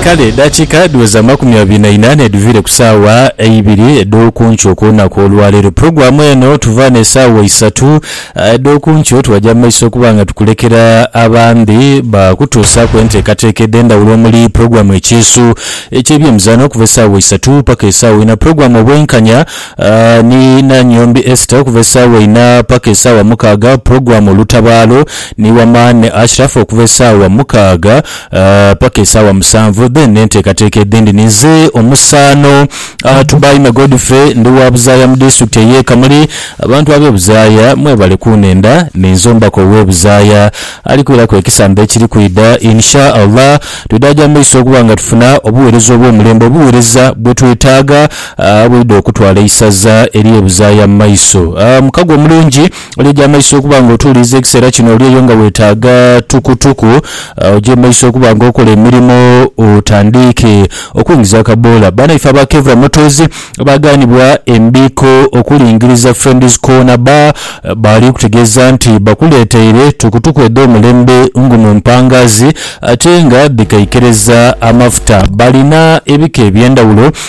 Kale edhakiika dhiweza amakumi abiri na ina nedhuviire ku saawa eibiri edhokunkyo kulunaku olwaleero. Pulogulamu eno tuva ne saawa isatu edhokunkyo twaja mu maiso okuba nga tukulekera abandhi bakutuusaaku enteekateeka edhendhawulo omuli pulogulamu ekyeeso ekyebyemizano okuva esaawa isatu paka esaawa ina, pulogulamu obwenkanya, Ni Nanyombi Esther okuva esaawa inha paka esaawa mukaaga, Program Lutabaalo ni Wamani Ashraf okuva esaawa mukaaga paka esaawa musanvu then n'enteekateeka edhindi ni nze omusaano Tubaime Godfrey ndi wa Buzaaya mu Disitulikiti ey'e Kamuli. Abantu ab'e Buzaaya mwebale kunhenda ni nze omubaka ow'e Buzaaya ali kwiraku ekisandha ekiri kwidha in sha Allah. Twidhaaja mu maiso okuba nga tufuna obuweereza obw'omulembe obuweereza bwe twetaaga A Bwidha okutwala eisaza eri ebuzaaya mu maiso. A Mukago omulungi, oli eja maiso okuba nga otuuliriza ekiseera kino oli eyo nga weetaaga tukutuku oje mu maiso okuba nga okola emirimo otandiike okuingiza akaboola. Banaife aba Kevra Motors abaagaanibwa embiiko okulingiriza Friends Corner Bar baali kutegeeza nti bakuleeteire tukutuku edh'omulembe ngu mu mpangaazi ate nga dhikaikereza amafuta. Balina ebika eby'endhawulo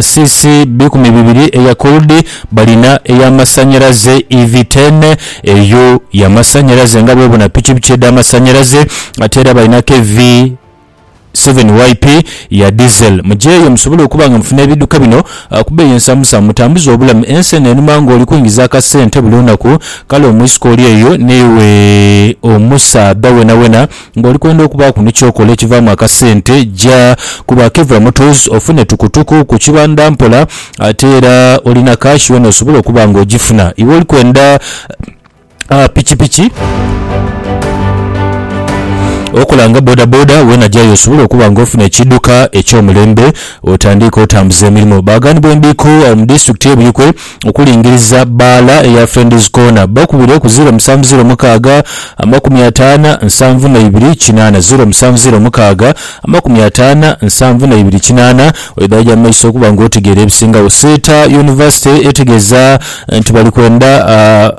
cc bikumi bibiri eya Kurdi balina eya masanyalaze EV ten eyo ya masanyalaze nga bwobona pikipiki edha masanyalaze ate era balina KV seven yp ya diesel muje eyo musobole okuba nga mufuna ebiduka bino kubeeyi ensamusamu mutambuze obulamu ensi eno enuma nga oli kuingiza akasente buli lunaku kale omwisika oli eyo newe omusaadha wenawena Ng'oli kwenda okubaaku ni ky'okola ekivaamu akasente, ja ku ba Kevra Motors ofune tukutuku ku kibanda mpola ate era olina kaashi wena osobole okuba ng'ogifuna. Iwe oli kwenda pikipiki, okola nga bodaboda, wena jayo osobole okuba ng'ofuna ekiidhuka eky'omulembe otandiike otambuze emirimo. Baghanibwa endiiko awo mu disitulikiti y'e Buikwe okulingiriza bbaala eya Friends Corner bakubire ku ziro musanvu ziro mukaaga amakumi ataana nsanvu na ibiri kinaana ziro musanvu ziro mukaaga amakumi ataana nsanvu na ibiri kinaana oidha aja mu maiso okuba nga otegeera ebisingagho. Seeta Yunivasite etegeeza nti bali kwenda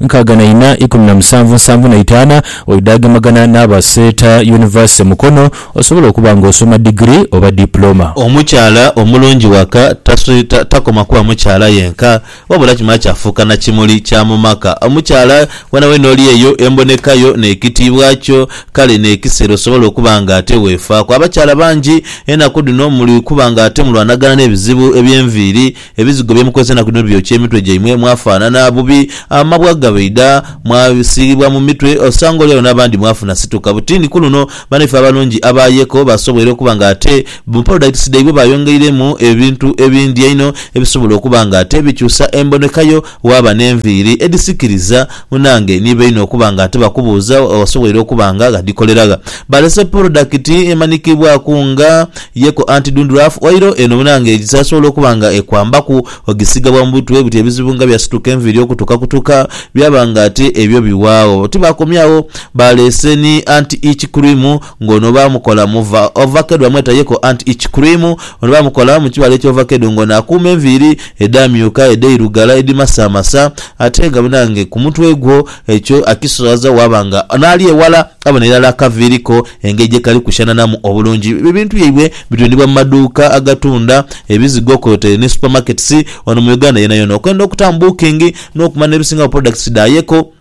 nkaaga na ina ikumi na musanvu nsanvu na itaana oidaagemagana n'aba Seeta University Mukono osobola okuba nga osoma digiri oba diploma. Omukyala omulungi waka tasweeta, takoma kuba mukyala yenka wabula kimala kyafuuka na kimuli kya mu maka. Omukyala weenaweena oli eyo emboneka yo n'ekitiibwa kyo kale n'ekiseera osobola okuba nga ate weefaaku. Abakyala bangi enaku dhino muli kuba nga ate mulwanagana n'ebizibu eby'enviiri, Ebizigo bye mukozesa enaku dhino byokya emitwe gyaimwe mwafaanana bubi, amabwa gabaidha, mwasiigibwa mu mitwe, osanga oli agho n'abandi mwafuna situka. Buti ni ku luno banaife abalungi abaayeeko baasoboire okuba nga ate mu Paradise dhaibwe baayongeiremu ebintu ebindi einho ebisobola okuba nga ate bikyusa emboneka yo, Waaba n'enviiri edhisikiriza, munaange ni baine okuba nga tibakubuuza wasoboire okuba nga ghadikolera gha. Baalese porodakiti emanhikibwaku nga Yeko Anti Dundruff Oil. Eno munaange esasobola okuba nga ekwambaku ogisiiga bwa mu butwe buti ebizibu nga bya situka enviiri okutuka kutuka byaba nga ate ebyo biwaagho. Tibaakomyagho, baalese ni Anti Itch Cream. nga ono baamukola mu va, ovakedo bamweta yeko anti ice cream, ono baamukola mu kibala eky'ovakedo nga ono akuuma enviiri edhaamyuka, edhairugala, edhimasaamasa ate nga banange ku mutwe gwo ekyo akiswaza waaba nga n'ali ewala abona irala akaviiri ko engeri gye kali kushanaanamu obulungi. Ebintu byaibwe bitundibwa mu maduuka agatunda ebizigo kwotaire ni supermarkets wano mu Uganda yonayona. Okwenda okutamu booking n'okumanya n'ebisingawo products dha yeko,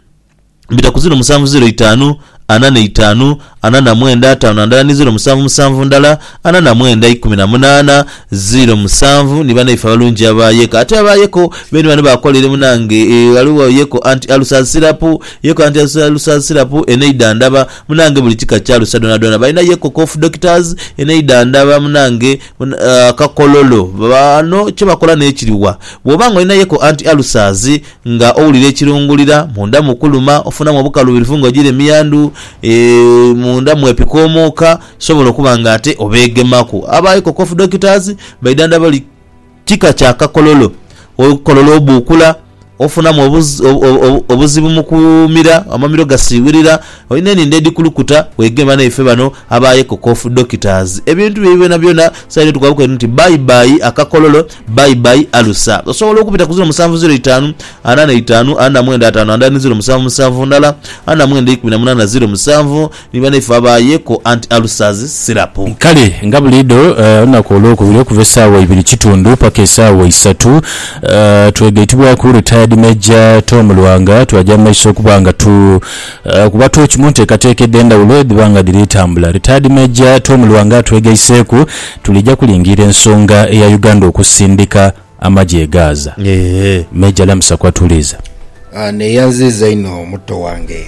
Mbita ku ziro musanvu ziro itaanu, ana na itaanu, ana na mwenda, ataanu na ndala ni ziro musanvu musanvu ndala, ana na mwenda, ikumi na munaana, ziro musanvu. Ni banaife abalungi aba Yeko. Ate aba Yeko beene bano baakola ere munange. Ghaligho Yeko anti alusa sirapu, Yeko anti alusa sirapu, eneidha ndaba, munange, buli kika kya alusa dhoonadhoona. Balina Yeko Cough Doctors, eneidha ndaba, munange, akakololo. Bano kye bakola n'ekiri wa? Bw'oba ng'olina Yeko anti alusazi, Nga owulira ekirungulira, munda mu kuluma ofunamu obukaluubirivu nga ogira emiyandhu, munda mwepika omwoka, sobola okuba nga ate obeegemaku. Aba Eco Cough Doctors baidhandha buli kika kya kakololo. Olukololo obuukula, ofunamu obuzibu mu kumira, amamiro gasiiwirira, olina enindho edhikulukuta, weegema naife bano aba Eco Cough Doctors. Ebintu byo ebi byonabyona saidi yo tukubabuuka nti bye bye akakololo Bye bye alusa. Osobola okubita ku ziro musanvu ziro itaanu ana na itaanu ana na mwenda ataanu andala ni ziro musanvu musanvu ndala ana na mwenda eikumi na munaana ziro musanvu ni banaife aba Yeko Anti Ulcers Syrup. Kale nga buliidho, olunaku olwokubiri okuva esaawa ibiri kitundu paka esaawa isatu, twegaitibwaku Retired Major Tom Lwanga twaja mu maiso okuba nga tu. Ku batu eki mu nteekateeka edh'endhawulo edhiba nga dhiri tambula, Retired Major Tom Lwanga atwegaiseeku, Tulija kulingiira ensonga eya Uganda okusindika amagye e Gaza. Major Lamusa ku atuliiza. Neyanziiza inho muto wange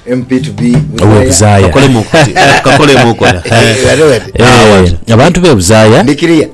MP to be Buzaaya. Kakolemu okutya. Kakolemu okola. Abantu b'e Buzaaya.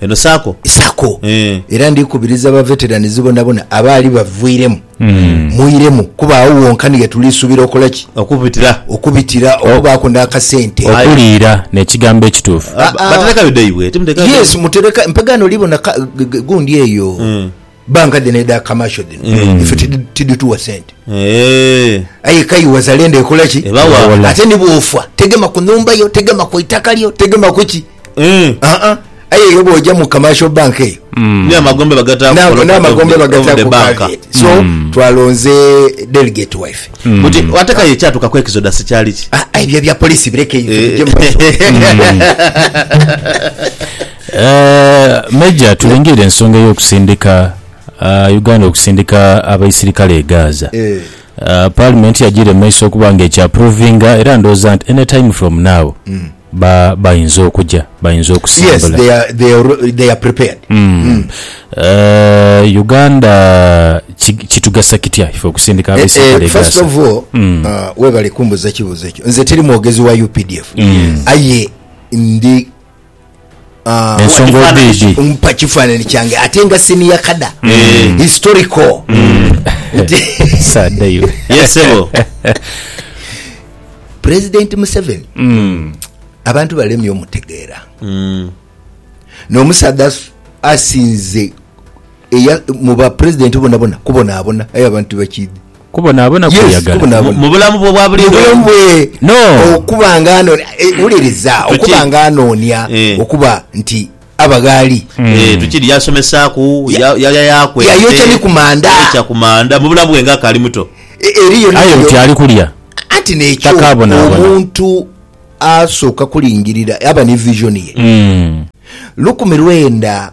Eno sacco. Sacco. Eeh. Era ndikubiriza ba veterans bonabona abaali bavuiremu mwiremu kuba agho wonka ni ghetulisuubira okola ki? Okubitira. Okubitira, okubaaku n'akasente. Okuliira n'ekigambo ekituufu. Aa. Baterekayo dai bw'eti, muterekayo dai. Yes, muterekayo. Mpagaana oli bona ka, gundi eyo. Banka dhino edha commercial dhino mm. ife tidituwa sente eh. aye kai wazalendo ekola ki ebawa ate nibwofa tegema ku nhumba yo tegema ku itaka lyo tegema ku ki mm. uh -uh. aye yo bwoja mu commercial bank eyo mm. n'amagombe bagataku so mm. twalonze delegate wife mm. buti ate kaye ekyatuka ku exodus kyali ki ah, ebyo bya polisi birekeyo eh. Major, tulingirire ensonga ey'okusindika Uganda okusindika abaisirikale e Gaza. Parliament yajiire mu maiso okuba nga ekya approvinga era ndhooza nti any time from now bayinza okuja, bayinza okusembula. Uganda kitugasa kitya ife okusindika abaisirikale e Gaza? Ah, Ensonga oba Ekifaananyi idi. ki- mpa kifaananyi kyange ate nga senior kada Eh. historical Saada iwe. Yes, sebo. president museveni Mm. abantu balemye omutegeera Mm. n'omusaadha as- asinze eya- mu ba president bonabona kubonaabona aye abantu bakidhi Kubonaabona kwe Yes, yagala kubonaabona. mu bulamu bwe obwa buli Mubulamu lunaku. bwe No. okuba nga anoonia eh, wuliriza Tuki- okuba nga anoonia Eh. okuba nti aba ghali Eh, tukiri yasomesaaku Ya- ya- yalya yakwete yayokya ni ku manda. yayokya ku manda mu bulamu bwe nga akaali muto E- eriyo aye neriyo. nti ali kulya anti nekyo Takaabonaabona. omuntu asooka kulingirira aba ne vision ye Mm. lukumi lwenda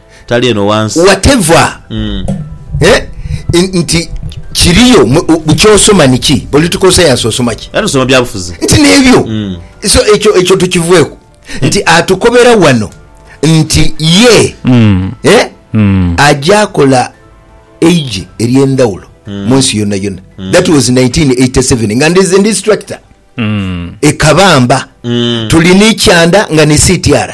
Tali eno wansi. Whatever eh nti kiriyo kyosoma niki political science osoma ki era tusoma byabufuzi nti nebyo so ekyo ekyo tukivweku nti atukobera wano nti ye eh ajakola eije eryendawulo munsi yona yona that was 1987 nga ndize ndi instructor ekabamba tuli ni kyanda nga ni CTR.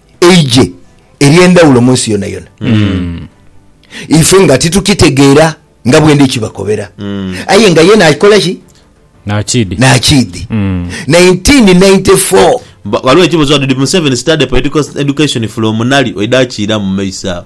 Eigye ery'endhawulo mu nsi yonayona. Ife nga titukitegeera nga bwendi kibakobera. Aye nga ye n'akikola ki? N'akiidhi. N'akiidhi. 1994. Ghaligho ekibuuzo ghano, Did Museveni study political education from Nali? Oidha kiiramu mu maiso agho.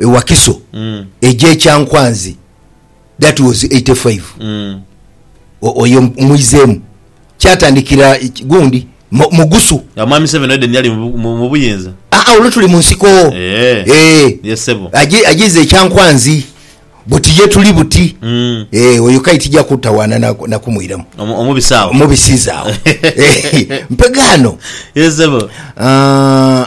e Wakiso egye Kyankwanzi that was 85 oyo mwizemu kyatandikira gundi Mugusu. Nga Mwami Seven Eden yali mubuyinza. Aa olwo tuli munsiko ee ee yes sebo ajize ekyankwanzi buti ye tuli buti mm. ee oyo kai tija kutawana nakumwiramu na omubisa awo omubisiza awo mpegano yes sebo aa.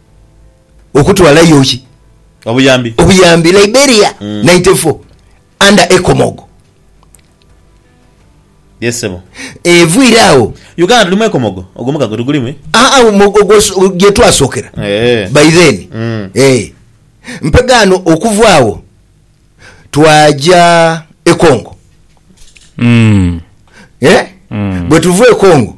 okutwalayo ki? Obuyambi. Obuyambi. Liberia ninety four under Ecomogo. Yes sebo. Eviire agho. Uganda tuli mu Ecomogo? Ogwo mukago tugulimu e? Aa ogwo gye twasokera by then ee. Mpegaano okuva agho twaja e Congo ee. Bwe tuva e Congo.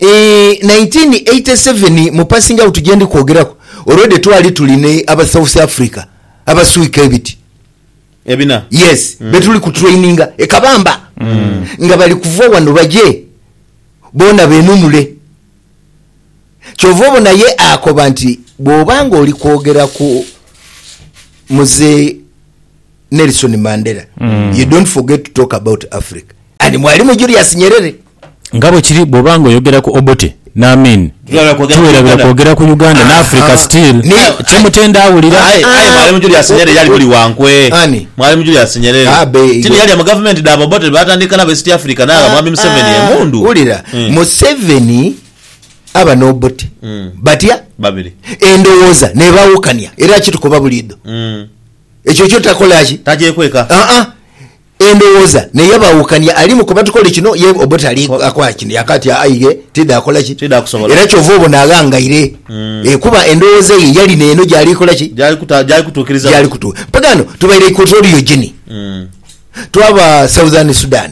1987 mu passing out gyendi kwogeraku already twali tuli ni aba South Africa abaswika ebiti Ebina. yes betuli ku traininga e Kabamba nga bali kuva wano baje boona benunule kyova obona ye akoba nti bwoba nga oli kwogera ku Mzee Nelson Mandela mm. you don't forget to talk about Africa and mwalimu Julius Nyerere nga bwe kiri bw'oba nga oyogera ku Obote n'Amin tuwerabira kwogera ku Uganda ah, n'Africa ah, still kyemutenda awulira mwalimu Julius Nyerere yali muli wankwe mwalimu Julius Nyerere ah, kino yali mu gavumenti da Obote batandika nabo East Africa naaba mwami Museveni emundu wulira hmm. Museveni aba n'Obote hmm. batya babiri endowooza nebawukania era kitukoba buliido hmm. Ekyo kyo takola ki? Tagyekweka. Aa, endhoghoza ne yabaawukania. Alimu kuba tukole kino, ye Obote ali akola kino. Yaaka ati, Aa, aye tidhaakola ki? Tidhaakusobola. Era kyova obona aghangaire. Ee, kuba endhoghoza ye yali n'eno gy'ali kola ki? Gy'ali kuta, gy'ali kutuukiriza. Gy'ali kutu. Mpaka ghano tubaire Equatorial Guinea. Twaba Southern Sudan.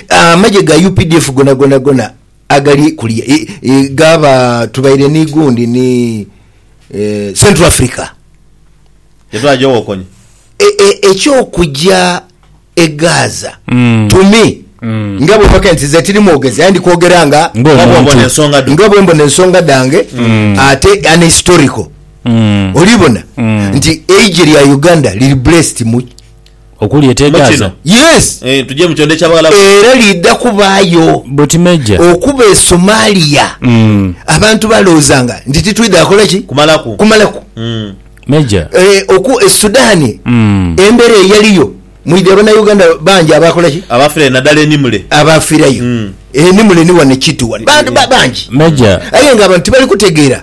Amagye ga updf gonagona gona Agali kuliya ghaba tubaire ni gundi ni Central Africa. Ye twaja owokonya. Eky'okuja e Gaza to me nga bwe bakaire nti nze tiri mwogezi aye ndi kwogera nga bwe mbona ensonga dhange ate an historical. Oli bona nti eigye lya Uganda liri blessed mu. Okuli ete Mu Gaza? kino. Yes! Eh, tuje mu kyondho eky'Abawalabu. Era liidha kubaayo. Buti Major. Okuba e Somalia, abantu balowoozanga nti titwidha kola ki? Kumalaku. Kumalaku. Mm. Major. Eh, oku, e Sudan, embera eyaliyo, mwidhi Abanauganda bangi abaakola ki? Abaafirayo nadala e Nimule. Abaafirayo. E Nimule ni wano e Kittu wano. Bantu ba, bangi. Major. Aye nga abantu tibali kutegeera.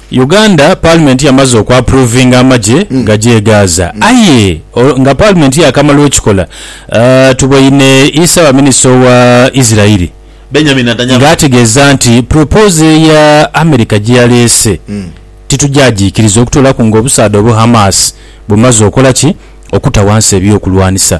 Uganda Paalimenti yamaze okwapruvinga amagye gaje e Gaza aye nga Paalimenti yaakamala okikola, tuboine Ssaabaminisita owa Isirairi ng'ategeeza nti pulopozo eya America gye yaleese titugyagiikiriza okutoolaku ng'obusaadha obwa Hamas bumaze okola ki? okuta wansi ebyokulwanisa.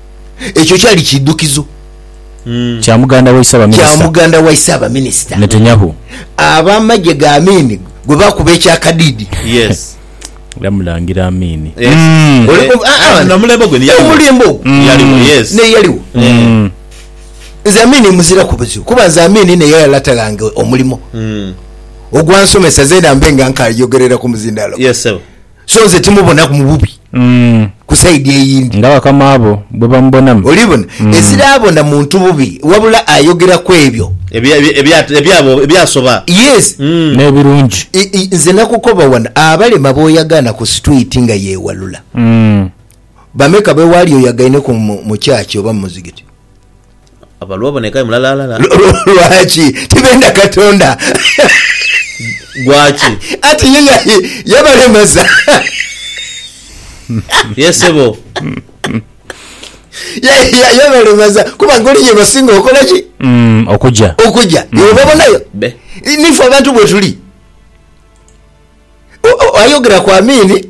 Ekyo kyali kiidhukizo Kya muganda waise kya abaminisita muganda waise abaminisita Netanyahu. ab'amagye ga Amin gwe baakuba ekyakadiidi. Yes. Era Mulangira Amin. Yes. Oli kumpi- ah, ah, Na mulembe ogwo ni yaliwo. omulembe ogwo Mm. Yaliwo, yes. naye yaliwo. Mm. Nze Amin muziraku buzibu kuba nze Amin naye yalata ghange omulimo Mm. ogwansomesa zeena mbe nga nkaayogerera ku muzindaalo. Yes, sebo. So nze timubonaku mu bubi ku sayidi eyindi. Nga bakama bo bwe bamubonamu. Olibona? Eziraabona muntu bubi, wabula ayogera ku ebyo. Ebyabo ebyasoba. Yes. N'ebirungi. Nze nakukoba wano, abalema b'oyagaana ku sitwiti nga yeewalula, bameka be wali oyagaineku mu kyachi oba mu muzigiti? Lwaki tibenda Katonda? Anti ye yabalemaza. Yabalemaza kuba ngoli yebasinga okola ki? Okuja. Obabonayo? Nife abantu bwetuli. Ayogera ku Amiini.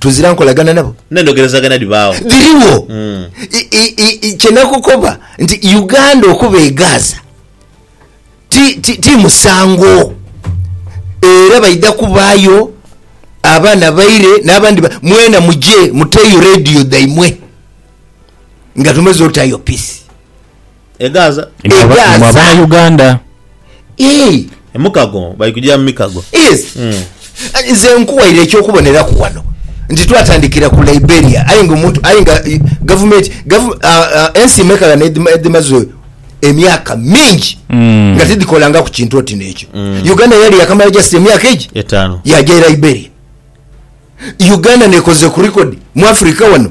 tuzira nkolagana nabo. N'endhogerezagana dhibaagho. Dhirigho. I, kye nakukoba nti Uganda okuba e Gaza ti, ti, ti musango. Era baidha kubaayo abaana baire n'abandi ba, mwena muje muteeyo radio dhaimwe nga tumaze otayo peace. Egaza. Imwe aba- Egaza. imwe abana Uganda. Ii, Emukago bali kujira mu mikago. yes. nze nkuwaire ekyokuboneraku wano nti twatandikira ku liberia aye nga omuntu aye nga eh, gavumenti gavu- ah, ah, ensi emekagana edhima- edhimaze emyaka mingi Mm. nga tidhikolangaku kintu oti nekyo uganda yali yakamala just emyaka egi Etaano. yaja e liberia uganda nekoze ku record mu africa wano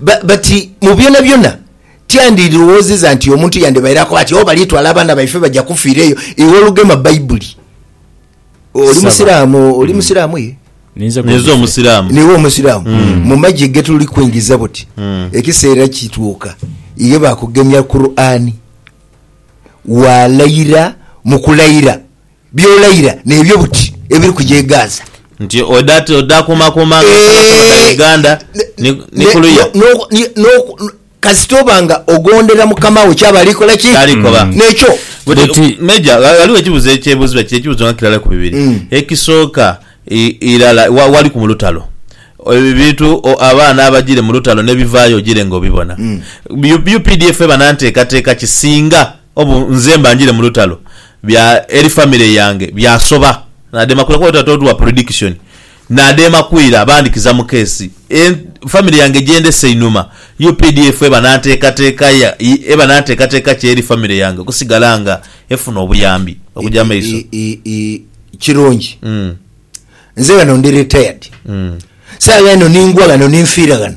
Bati, Mu byonabyona, tyandirowoozezza nti omuntu yandibaire akoba ati, Oh, balitwala abaana baife, baja kufiira eyo. Iwe olugema Baibuli. Oli Musiraamu? Oli hmm. Musiraamu ye? Ninze Omusiraamu. Niwe Omusiraamu. Hmm. Mu magye ge tuli kuingiza buti, hmm. ekiseera kituuka iye bakugemya Kuraani, waalayira mu kulayira By'olaira n'ebyo buti ebiri kuja e Gaza. Nti odhakuumakuuma nga osaba saba dha Uganda ni ku luya. Kasita oba nga ogondera Mukama wo kyaba ali kola ki? Kyali kola. N'ekyo. Buti. Major, ghaligho ekibuzo ekyebuuzibwa kino, ekibuzo nga kirala ku bibiri. Ekisooka, irala waliku mu lutalo, ebintu abaana abajire mu lutalo n'ebivaayo ojire nga obibona? Updf eba na nteekateeka ki singa obu nze mba njire mu lutalo? Bya Eli Family yange byasoba nadema kwira kuba wetwali totuwa prediction nadema kwira bandikiza mu case e family yange gyendese inhuma updf eba nantekateka ya eba nantekateka ki Eli family yange okusigala nga efuna obuyambi okuja maiso Kirungi nze ghano ndi retired saagha eno ningwa ghano ninfiira ghano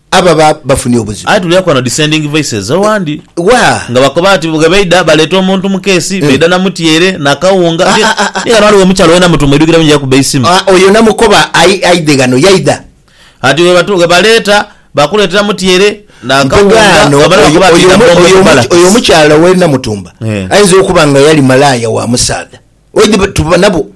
ababa bafunye obuzibu. Aye tuliaku ghano descending voices owandi Waa. nga bakoba ati bwe baidha baleeta omuntu mu keesi, baidha na mutyeere, na kawunga, Ah, ah, ah, ah. ni ghano ghaligho omukyala oghenda mu tumwidhukira buyinza yakuba eisimu. Ah, oyo namukoba ai, aidhe ghano, yaidha. Ati bwe batu, bwe baleeta, bakuleetera mutyeere, na Mpoge kawunga, ghano, ghabula oyo, bakoba ati oyo, omu- idha omu- oyo, omu- oyo barracks. omukyala ow'e Namutumba Eh. aidha okuba nga yali malaaya wa musaadha. Oidhi tuba nabo.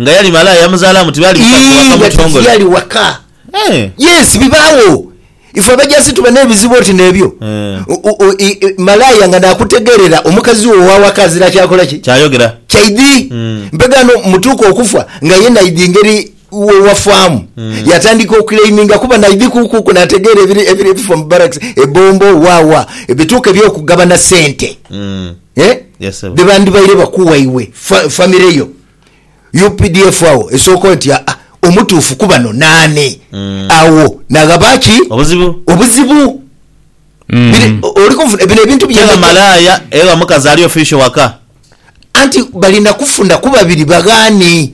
Nga yali malaaya yamuzalamu tibali bika gwe waka nga mutongole. Tiyali waka. Eh. Yes bibagho ifwe abajasi tuba nebizibu oti nebyo eh. Malaaya nga nakutegerera omukazi wo owawaka azira kyakola ki? Kyayogera. Kyaidhi mm. mpegano mutuuka okufa nga ye naidhi ngeri wewafaamu mm. yatandika okulaiminga kuba naidhi kukuku nategeera ebiri ebifa mu barracks ebombo wawa ebituuka ebyokugabana sente mm. eh? Yes, sebo. dhebandibaire bakuwa iwe fa, family yo updf agho esooka oti aa omutuufu kubano naani agho naghaba ki Obuzibu. obuzibu Biri- o- oli kunfuna bino ebintu Kyenga bye malaaya ewa mukazi ali official waka. anti bali nakufuna kubabiri baghaani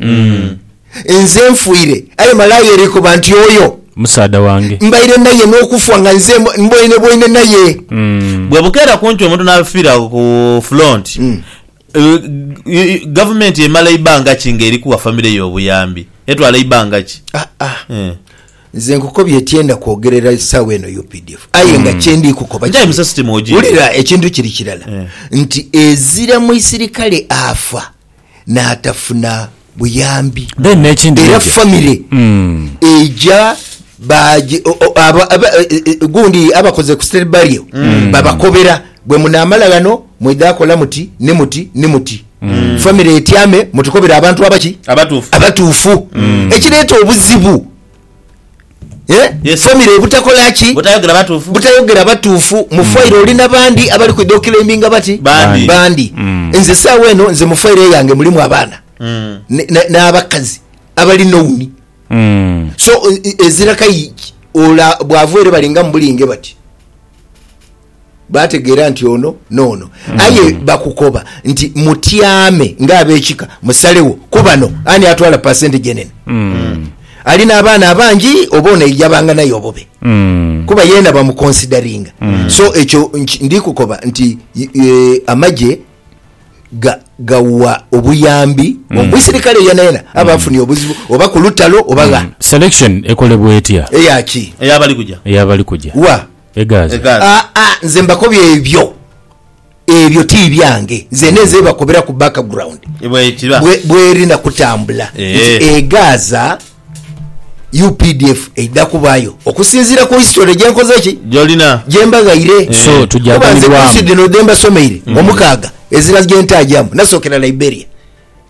Nze nfuire, aye malaaya erikoba nti oyo. Musaadha wange. Mbaire naye n'okufwa nga nze mbwainebwaine naye. Bwebukeera kumpi omuntu n'afiira ku fulonti, gavumenti emala ibanga ki ng'eri kuwa famire ye obuyambi? Etwala ibanga ki? Haa. Nze nkukobye tyenda kwogerera esaawa eno updf aye nga kyendi kukoba kiri, wulira ekintu kiri kirala nti ezira muisirikale afa, n'atafuna buyambi Then n'ekindi era Meja. famire eija baagi- o- o- aba- aba- e- e- e- gundi abakoze ku state burial babakobera bwe munaamala ghano mwidha kola muti ni muti ni muti famire etyame mutukobere abantu abaki Abatuufu. abatuufu ekireeta obuzibu Eeh Yes sir. family obutakola ki? Butayogera batuufu. butayogera batuufu mu file oli na bandi abali kwidha okilaiminga bati Bandi. bandi nze saawa eno nze mu file yange mulimu abaana ne- ne- n'abakazi abali nouni so e- e- ezira kai ola bwava ere balingamu bulinge bati Baategeera nti ono n'ono. Aye bakukoba nti, Mutyame ng'ab'ekika, musalegho ku bano ani atwala pasenti gye nene. Ali n'abaana abangi oba ono aija banganayo obube? Kuba yeena bamukonsidaringa. So ekyo ndi kukoba nti amagye gawa obuyambi omuisirikale yeenayeena aba afunye obuzibu oba ku lutalo oba gha. Selection ekolebwa etya? Eya ki? Ey'abali kuja. Ey'abali kuja. Wa? e Gaza. Aa, nze mbakobye ebyo, ebyo ti byange. Nze ninze bibakobera ku background bwe, bweri na kutambula nti e Gaza updf eidha kubaayo, okusinziira ku history gye nkoze ki, gye mbaghaire. Kuba nze course dhino dhe mbasomeire omukaaga, ezira gye ntaajamu nasookera Liberia.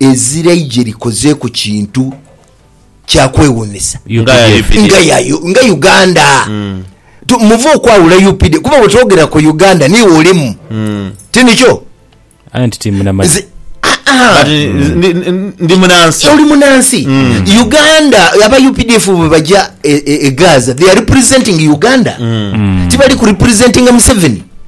Ezira aije likozeeku kintu kya kwewuunhisa. Nga Uganda. Muve okwawula UPD kuba bwe twogera ku Uganda niiwe olimu. Ti nikyo? Aye nti ti munamanhi. Ndi munansi. Oli munansi. Uganda, aba updf bwe baja e Gaza, they are representing Uganda. Tibali ku representinga Museveni.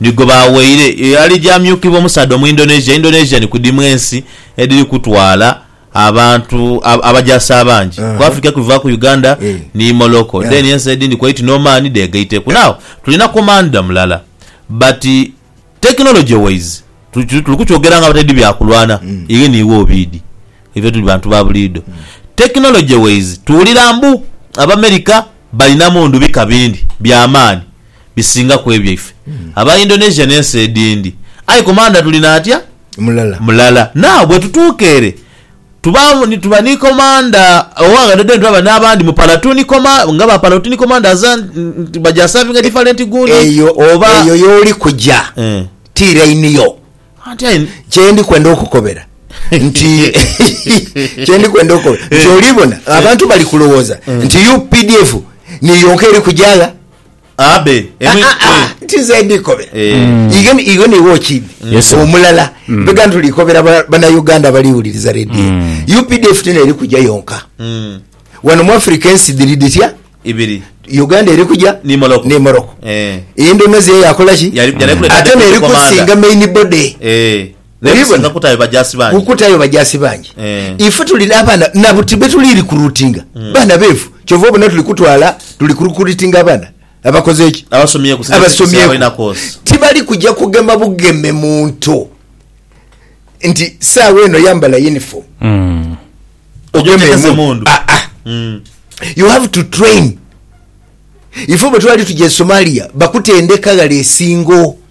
ni gwe baaghaire eyo alija amyukibwa omusaadha Omuindonesia, Indonesia ni ku dhimu ensi edhiri kutwala abantu abajaasi abangi ku Africa okuvivaku Uganda ni Morocco then ensi edhindi Kuwait ni Oman dhegaiteku. Now tulina commander mulala but technology wise tuli kukyogera nga abataidhi bya kulwana ighe ni iwe obiidhi ife tuli bantu ba buliidho technology wise tuwulira mbu Abamerica balina mundu bika bindi bya maani. bisinga ku ebyaife. Aba Indonesia n'ensi edhindi, aye komandha tuli n'atya? Mulala. Mulala. Nagh bwetutuuka ere, tuba ni, tuba ni komandha owaghano then twaba n'abandi mu palatoon koma, nga ba palatoon commanders a, nti baja savinga different gundi, Eyo, oba. eyo y'oli kuja, Eh. ti line yo. Anti aye. Kye ndi kwenda okukobera nti, kye ndi kwenda okukobera nti, oli bona abantu bali kulowooza nti UPDF niyo yonka eri kuja gha? abe emwe Ah, ah, ah, nti nze ndikobera Eh. ighe ni- ighe niwe okindi Yes, sir. omulala bega nti tulikobera ba- banauganda abaliwuliriza redio updf tino eri kuja yonka Mm. wano mu africa ensi dhiri dhitya ibiri uganda eri kuja ni moroko ne moroko Eh. endonezi eyo yakolaki Yali- yali kuleta ate deputy neri commander. kusinga main body Eh. Naye Obibona? kutayo bajaasi bangi. Kutayo bajaasi bangi. Eh. Ife tuli n'abaana na buti be tuli rikrutinga baana beefu. Kyova obona tuli kutwala, tuli kurikuritinga abaana abakoze ki? Abasomyeku, singa singa Abasomyeku. balina koosi. Tibali kuja kugema bugeme muntu nti saawa eno yambala yunifoomu Mm. Oja ogeme oteekesa emundu. emundu. Ah, ah. Mm. You have to train. Ife bwe twali tuja e Somalia bakutendeka ghale esingo.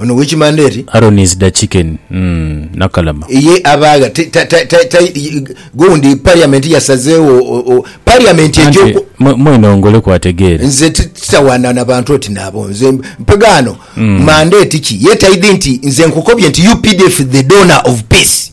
Ono wekimanda eri. Aaron is da chicken nakalama. Ye abagha gundi parliament yasazegho parliament eja oku. Anti mwena ongoleku ategeere. Nze titawana na bantu oti naabo nze mpegha ano mandate ki ye taidhi nti nze nkukobye nti updf the donor of peace.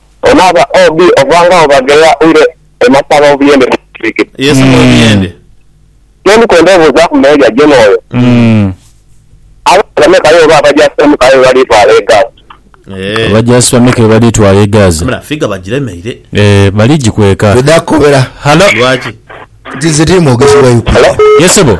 Onaaba obi ovangao bagheya oire e masaba obuyende ne bisiikira. Ye saba obuyende. Kyendi kwenda obuuzaaku mu meeya Gen oyo, abaana bameka aye oba abajaasi bameka aye bebaliitwala e Gaza? Eeh. Abajaasi bameka bebaliitwala e Gaza? Wabula figa bagiremeire. Eeh baligikweka. Twidha kukobera. Halo. Lwaki? Nti nze tiri mwogezi wa Ukraine. Yes sebo.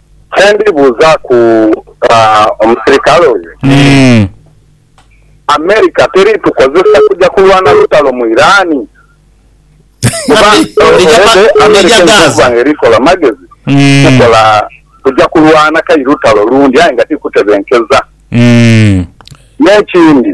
Kye ndi buuzaaku omusirikale oyo ni, America teri tukozesa kuja kulwana lutalo mu Iran? Kuba America eidhi okuba nga eri kola magezi kukola kuja kulwana kai lutalo lundi aye nga ti kutebenkeza. N'ekindi,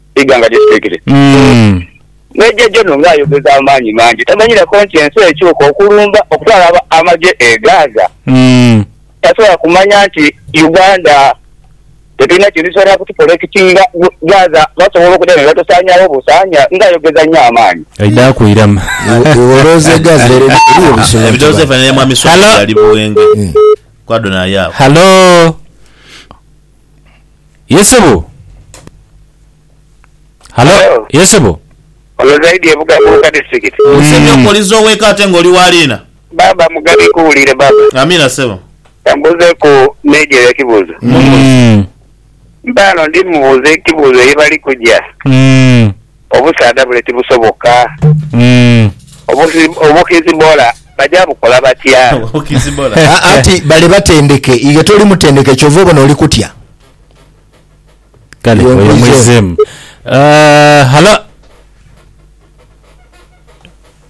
eighanga gye tutekere. Meeja Jono ng'ayogeza amaanyi mangi. Tamanyireku nti ensi ekyuka okulumba okutwala amagye e Gaza. Tasobola kumanya nti Uganda tetulina kintu kisobola kutupolekitinga Gaza basobola okudha ni batusaanyaawo busaanya. Ng'ayogeza nnyo amaanyi. Aidhaaku irama. Iwe olowooza e Gaza ere eriyo busulo? Ebidhoozi ebifanana ne Mwami Swahili ali Buwenge. Kwadho naye agho. Halo. Ye sebo. Halo. Halo. Ye sebo. Ono Zaidi e Bugabuuka district. Ese nyo okoliza oweka ate nga oli wa liina. Baaba Mugabi nkuwuliire baaba. Amiina ssebo. Kambuuzeeku Meeja ekibuuzo. Mumbuuze. Mpaano ndi mubuuze ekibuuzo ye bali kuja. Obusaadha bule tibusoboka. Obukizibola baja bukola batya? Anti bale batendeke. Iwe toli mutendeke kyova obona oli kutya. Kale oyo mwizeemu. Halo.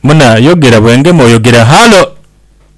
Muna yogera bwengema oyogera. Halo.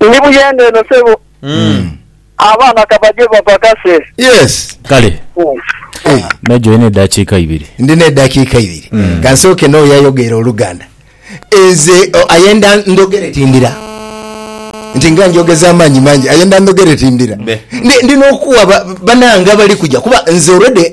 Ndi Buyenga eno sebo. Abaana kabaje bapakase. Yes. Kale Meja olina eddakiika ibiri. Ndina eddakiika ibiri. Ka nsooke n'oyo ayogeire Oluganda. Nze o, ayenda ndhogere tindira. Nti nga njogeza amaanyi mangi. Ayenda ndhogere tindira. Ndi, ndina okuwa ba, banange abali kuja kuba nze already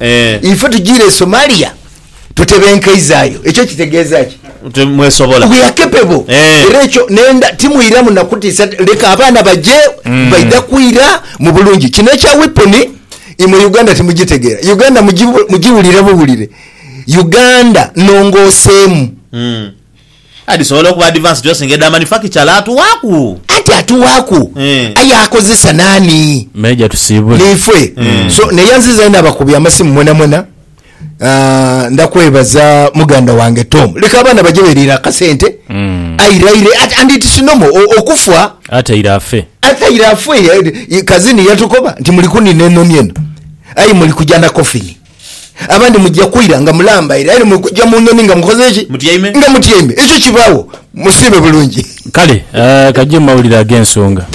Eh. Ife tujiire e Somalia tutebenkeizaayo. Ekyo kitegeeza ki? Nti mwesobola. We are capable. Eh. Era ekyo nenda timwiramu na kutiisa leka abaana baje mm. baidha kwira mu bulungi. Kino ekya weapon imwe Uganda timugitegeera. Uganda mugiwulire buwulire. Uganda nongooseemu. Mm. Adhisobola okuba adivance dyosinga edha manufacturer atuwaaku. Anti atuwaaku Eh. aye akozesa naani? Meja tusiibule. Niifwe. So naye nzizayo n'abakubye amasimu mwenamwena. Ah, ndakwebaza muganda wange Tom. Leka abaana baje beriire akasente. Airaire ate and it's normal o- okufa. Ataire afe. Ataire afe. Kazini yatukoba nti muli kunina enoni eno. Aye muli kuja na coffin. Abandi muja kwira nga mulambaire, aye ni mwe kuja mu nhonhi nga mukoze ki? Mutyaime. Nga mutyaime. Ekyo kibaagho. Musiime bulungi. Kale, ka gye mawulire ag'ensonga.